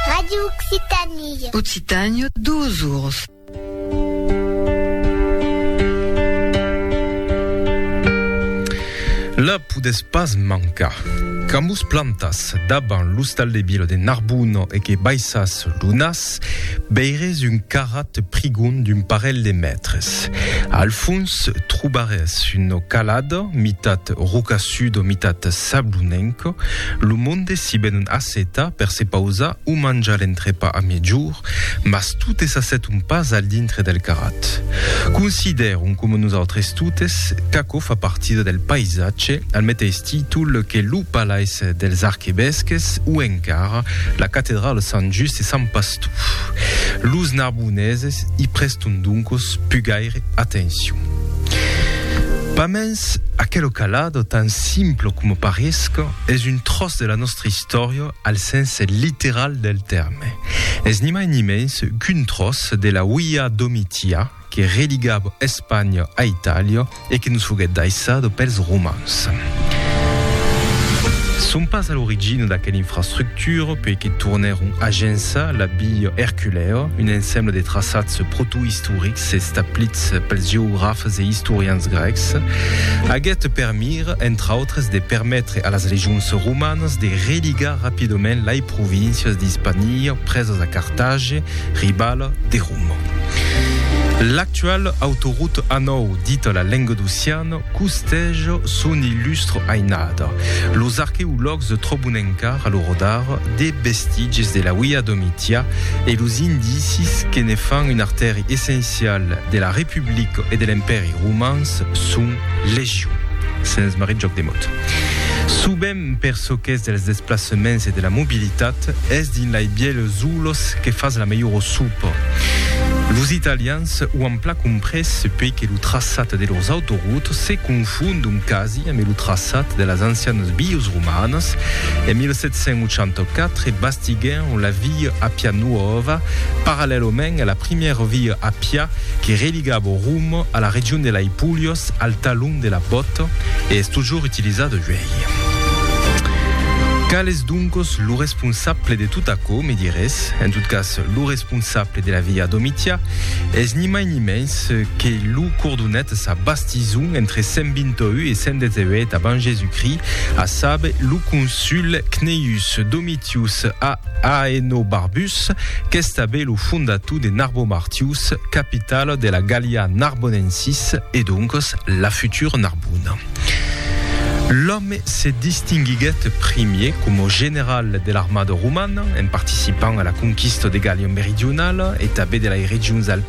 Radio Occitanie. Occitanie, duos ours. La podes pas mancar. Camus plantas daban l'ostal de Bilo de Narbuno e que baissas lunas, veires un carrat prigon d'un parelh de mètres. Al fons trobarès una calada, mitat rocassuda, mitat sablonenca. Lo monde s'i ven un assetar per se pausar o manjar l'entrepà a miègjorn, mas totes s'asseton pas al dintre del carrat. Considèron, coma nosautres totes, qu'aquò fa partida del païsatge al meteis temps. títol que lo Palais dels Arquevesques o encara la Catedrala Sant Just e Sant Pastor. Los narboneses i preston doncos pu gaire atencion. Pas mens, aquelo calado, tan simple coma paresc, es un tròç de la nòstra istòria al sens literal del tèrme. Es ni mai ni mens qu'un tròç de la Uia Domitia, que religava Espanha a Itàlia e que nos foguèt daissada pels romans. Son pas a l'origina d'aquela infrastructura puèi que tornèron agençar la Via Erculèa, un ensembla de traçats protoistorics establits pels geografes e istorians grècs, aguèt per mira, entre autres, de permetre a las legions romanas de religar rapidament lai províncias d'Ispania presas a Cartagi, Ribala de Romo. L'actual autoroute A9, dita la Lengadociana, costèj son illustre ainada. Los arqueològs tròbon encara lo rodar de vestitges de la Via Domitia e los indicis que ne fan un artèri essencial de la Republica e de l'Empèri Romans son legion. Sens marrit jòc de mot. Subèm. Per çò qu'es dels desplaçaments e de la mobilitat, es dins lei bièlhs zoolos que fas la melhora sopa. Los italians o an plan comprés puèi que lo traçat de lors autoroutes se confondon quasi ambe lo traçat de las ancianas vias romanas. En 1784 bastiguèron la via Appia Nuova parallèlament a la primièra via Appia que religava Roma a la region de lei Pulhas, Ps al talon de la bòt e es totjorn utilizat uèi. Qual es doncos lo responsable de tot aquò, me dirés? En tot cas, lo responsable de la via Domitia es ni mai ni mens que lo cordonet sa bastison entre 128 e 118 abans Jesucrist, a saber, lo consul Cneius Domitius Aenobarbus, qu'estabe lo fondator de Narbo Martius, capitala de la Gallia Narbonensis e doncas la futura Narbona. L'òme se distinguiguèt primier coma general de l'armada romana en participant a la conquista de Gallia Meridionala e tanben de las regions alpinas,